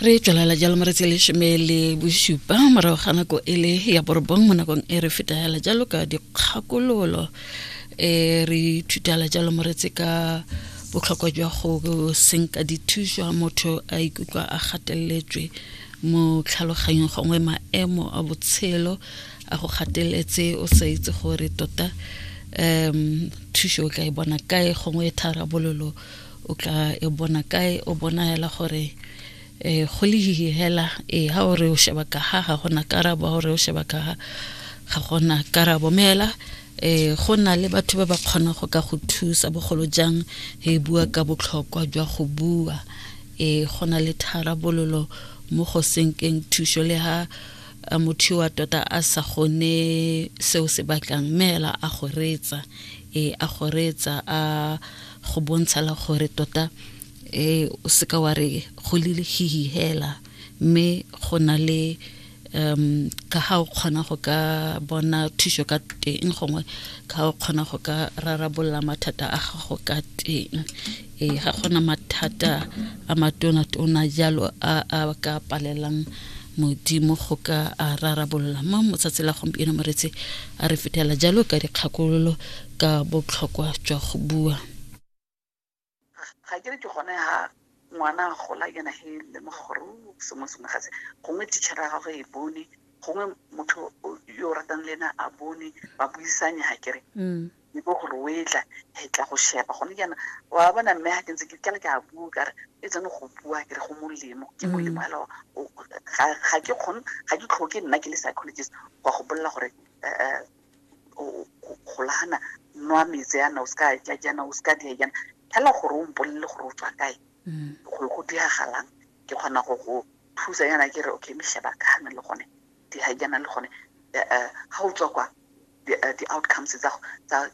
re tswelela jalo mo re tse lesome le bosupa morago ga nako e le ya borobong mo nakong e re fetagela jalo ka dikgakololo e re ithutela jalo mo re tse ka botlhokwa jwa go senka dithuso motho a ikutlwa a gateletswe mo tlhaloganyong gongwe maemo a botshelo a go gateletse o sa itse gore tota um thuso o tla e bona kae gongwe tharabololo o tla e bona kae o bona hela gore um go le hihi hela ee ha o re o sheba ka ha ga gona karabo ha o re o sheba ka ha ga gona karabo mme hela um go na le batho ba ba kgonang go ka go thusa bogolo jang e bua ka botlhokwa jwa go bua um go na le tharabololo mo go senkeng thuso le ha motho wa tota a sa gone seo se batlang mme hela a go reetsa ee a go reetsa a go bontshela gore tota um o seka wa re go lelehihi hela mme go na le um ka ga o kgona go ka bona thuso ka teng gongwe ka o kgona go ka rarabolola mathata a gago ka teng e ga gona mathata a matona-tona jalo a a ka palelang modimo go ka a rarabolola mo motsatsi la gompieno moretse a re fetela jalo ka dikgakololo ka botlhokwa jwa go bua ga ke re ke gone ha ngwana a gola yena he lemoga gore o sengwe sengwe ga se gongwe teachera ya gagwe e bone gongwe motho yo o ratang le ena a bone ba buisanye ga kere mm. e bo gore o etla e tla go shepa gone jaana wa bona mme ga ke ntse ke tlala ke a bua kare e tsene go bua ke re go molemo ke mm. molemo hela ga ke kgone ga ke tlhoke nna ke le psychologist go go bolela gore eh, eh, golana nwa metse yana o seka ja jana o seka dia jana fela gore o mpolele gore o tswa kae mm. gore go diragalang ke kgona go go thusa yana ke re okay me sheba kana le gone di ha jana le gone eh, eh, ga o tswa kwa eh, di-outcomes tsa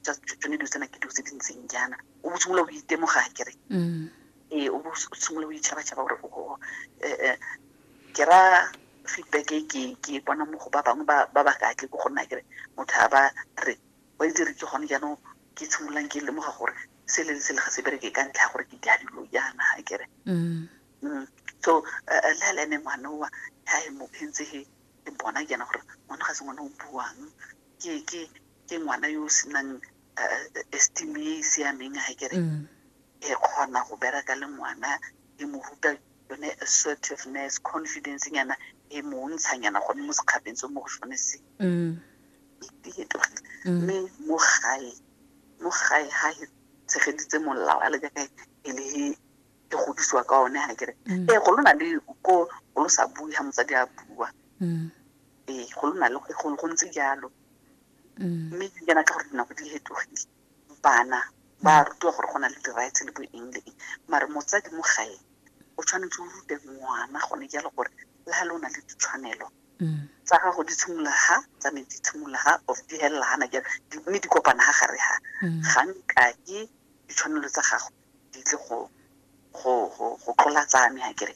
tsone dilo tsena ke dilo tse di ntseng jana o bo simolola o itemoga kere mm. ee o bo simolola o itšhabatšhaba gore ke ra feedback e ke ke e bona mo go ba bangwe ba ba ka tle ko gonna kere motho a ba re wa itse re ke gone jaanong ke tshimololang ke lemoga gore se le se le ga se bereke ka ntlha ya gore ke di dilo jaana ga kere mm. mm. so eh, eh, le a le ene ngwana oa ga e mo phentse he e bona jaana gore ngwana ga se ngwana o buang ke ke ke ngwana yo o senang eh, esteem e e siameng ga kere mm. e kgona go bereka le ngwana e mo ruta yone assertiveness confidence nyana e montsha nyana gone mo sekgapeng se mo go sone se mm. mm. mme mo gae mo gae ga e tshegeditse molao a le jaaka e le e godisiwa ka one ga kere mm. ee go lo na le ko go lo sa bue ga motsadi a bua ee go lo na le go ntse jalo mme jaana ka gore dinako di fetogile bana ba mm. rutiwa gore go na le di-rights le bo eng le eng mare motsadi mo gae o tshwanetse o rute ngwana gone jalo gore le ga le o na le ditshwanelo mm. tsa gago di tshimolola ga tsa me di tshimolola ga of di helela gana jalo mme di kopana ga gare ga mm. ga nka ke ditshwanelo tsa gago di tle go go go go tlola tsa me ga kere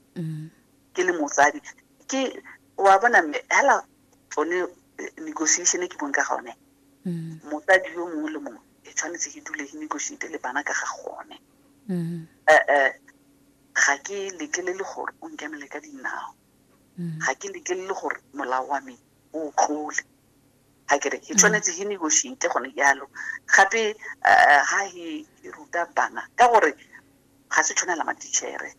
ke le motsadi ke wa bona mme hela tsone eh, negotiation e ke bong ka gone mm. mosadi yo mongwe le mongwe e tshwanetse ke dule ke negotiate le bana ka ga gone mm. eh, eh, ga ke lekelele gore o nkemele ka dinao mm. ga ke lekelele gore molao wa me o tlole ga kere ke tshwanetse ke negotiate gone jalo gape ga e ruta bana ka gore ga se tshwanela matitšhere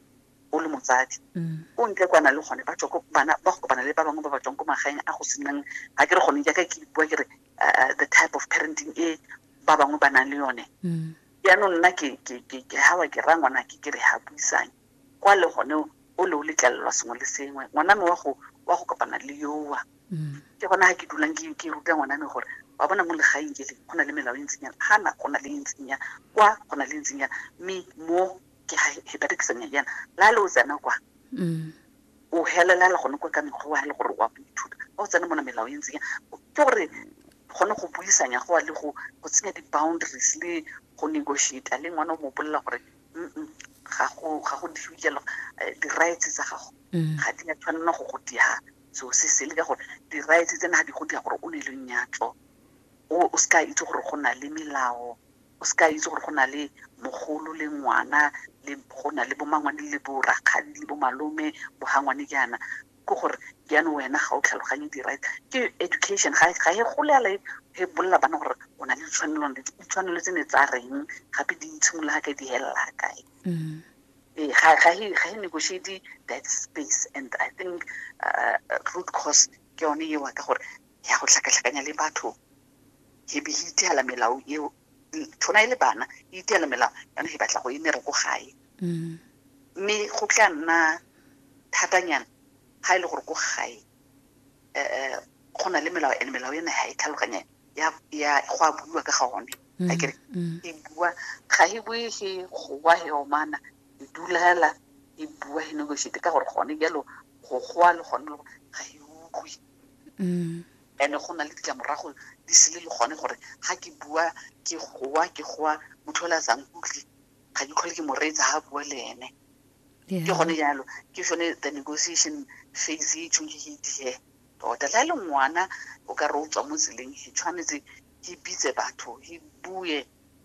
o le motsadi mm. o ntle kwana le gone ba tswa ko bana ba go kopana le ba bangwe ba ba tswang ko magaeng a go senang ga ke re gone jaaka ke bua ke re uh, the type of parenting e ba bangwe ba nang le yone mm. jaanong nna ke gawa ke ra ngwana ke ke re ga buisang kwa le gone o le o letlelelwa sengwe le sengwe ngwana me wa go wa go kopana le yowa mm. ke gona ga ke dulang ke ruta ngwana me gore wa bona mo legaeng ke le go na le melao e ntseng yana ga na go na le e ntseng yana kwa go na le e ntseng yana mme mo ke ha he berekisa meriana la le o tsena kwa mm. o helelela gone kwa ka mekgwa wa le gore wa go ithuta o tsena mona melao e ntseng ke gore gone go buisanya go a le go go tsenya di-boundaries le go negotiata le ngwana o mo bolelela gore ga go dife jalo eh, di-rights tsa gago mm. ga di a tshwanela go go diga seo se sele ka gore di-rights tsena ga di go diga gore o ne le nyatlo o se ka itse gore go na le melao O se ka itse gore go na le mogolo le ngwana, le go na le bo mmangwane le bo rakgadi le bo malome, bo hangwane jaana. Ke gore jaanong wena ga o tlhaloganye di-right. Ke education, ga e gole fela e bolelela bana gore o na le ditshwanelo le ditshwanelo tse ne tsa reng, gape di tshimolola ga kae, di felela kae. Ee, ga e negotiate that space and I think root cause ke yone eo ka gore ya go tlhakatlhakanya le batho e be e iteela melao eo tshwana e le bana e iteela melao yana e batla go e mere ko gae mm. mme go tla nna thatanyana ga e le gore ko gae um go na le melao and melao ena ga e tlhaloganya ya go a buiwa ka ga one mm, a kere mm. e bua ga e bue ge gowa he omana e dulela e bua he negotiate ka gore gone jalo go gowa le gone ga e utlwe and-e go na le ditlamorago di sele le gone gore ga ke bua ke goa ke goa motho ole a sa nkutlwe ga ke tlhole ke mo reetsa ga bua le ene ke gone jalo ke sone the negotiation phase e tshweng ke ke itihe tota le a le ngwana o ka re o tswa mo tseleng e tshwanetse ke bitse batho ke bue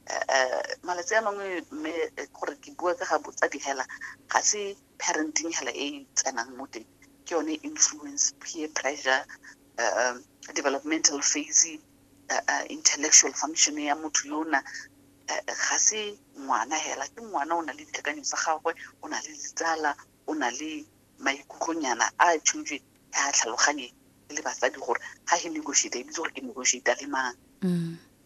um malatsi a mangwe mme gore ke bua ka ga botsadi hela ga se parenting hela e tsenang mo teng ke yone influence peer pressure uh, developmental phase uh, uh, intellectual function ya motho yo na ga se ngwana hela ke ngwana o na le dikakanyo tsa gagwe o na le ditsala o na le maikutlonyana a tshwitswe a tlhaloganye le batsadi gore ga he negotiate ebitse gore ke negotiate le mang mm.